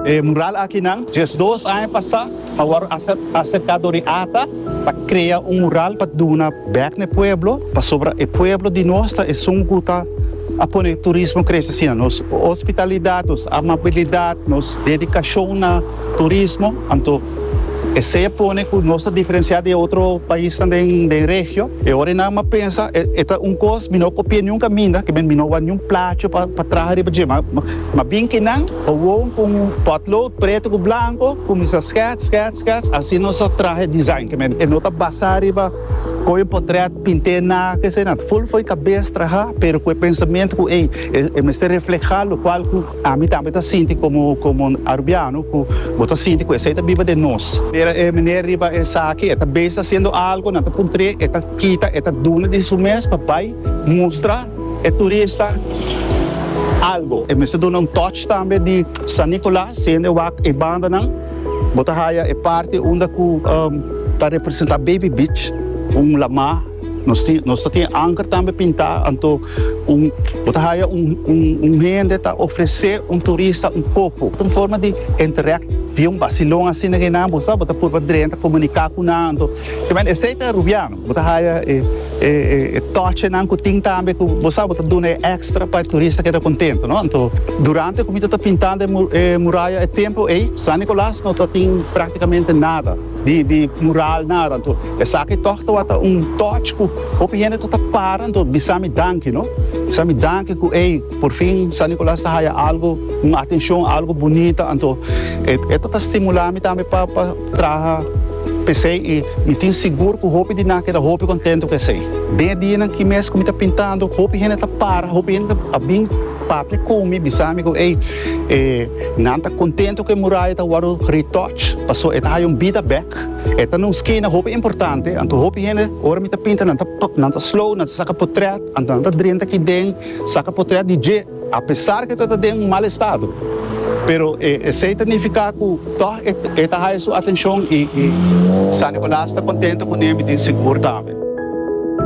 E mural akinan diesdos aña pasá a wòrdu aserká dor e ata pa krea un mural pa duna bèk na e pueblo pasobra e pueblo di nos ta esun ku ta a pone turismo krese asina. Nos ospitalidat, nos amabilidat, nos dedikashon na turismo anto. Esey a pone cu nos ta diferencia di e otro paisnan den regio. E ora e nan a pensa e ta un cos mi no copia niun caminda, que mi no wak niun placho pa traha riba dje. Ma bin ki nan gewoon cu un potlood preto cu blanco cuminsa skets, skets, skets, asina nos a traha e design. E no ta basa riba coge un potret pinte na esey na. Full fo'i cabes traha pero cu e pensamento cu ey e mester refleha locual cu. Ami tambe ta sinti komo komo un arubiano ku bo ta sinti ku esei ta biba den nos. Mira e meneer riba esaki, e ta bes ta hasiendo algo, nan ta puntr'é, e ta kita, e ta duna di su mes pa bai mustra e turista algo. E mester duna un touch tambe di San Nicolas, siendo e wak e bandanan, bo ta haya e parti unda ku ta representá Baby Beach, un lamá. Nos tin nos ta tin e anker tambe pintá anto un bo ta haya un un un hende ta ofresé un turista un popo un forma di interact via un basilon asina ke nan bo sa bo ta purba drenta komuniká ku nan anto ta men esei ta e rubiano bo ta haya e e e tòchenan ku tin tambe ku bo sa bo ta duna e èkstra pa e turista keda kontentu no anto durante ku mi ta ta pintando e muraya e templo ei San Nikolas no ta tin praktikamente nada. di di mural nan anto esaki tog tawata un touch ku hopi hende ta ta para anto bisa mi danki no bisa mi danki ku ey por fin San Nicolas ta haya algo un atencion algo bunita anto e e ta ta stimula mi tambe pa pa traha pesey y mi tin sigur ku hopi di nan keda hopi contento cu esey den e dianan ki mes ku mi ta pintando hopi hende ta para hopi hende a bin Pape con mi bisa mi cu ey e nan ta contento cu e muraya ta wordo retouch paso e ta haya un bida bek. E ta na un skena hopi importante anto hopi hende ora mi ta pinta nan ta nan ta slow nan ta saca potret anto nan ta drenta aki den saca potret di dje apesar cu e ta ta den un mal estado pero e esey ta nifica cu tog e e ta haya su atencion y San Nicolas ta contento cu niebe tin sigur tambe.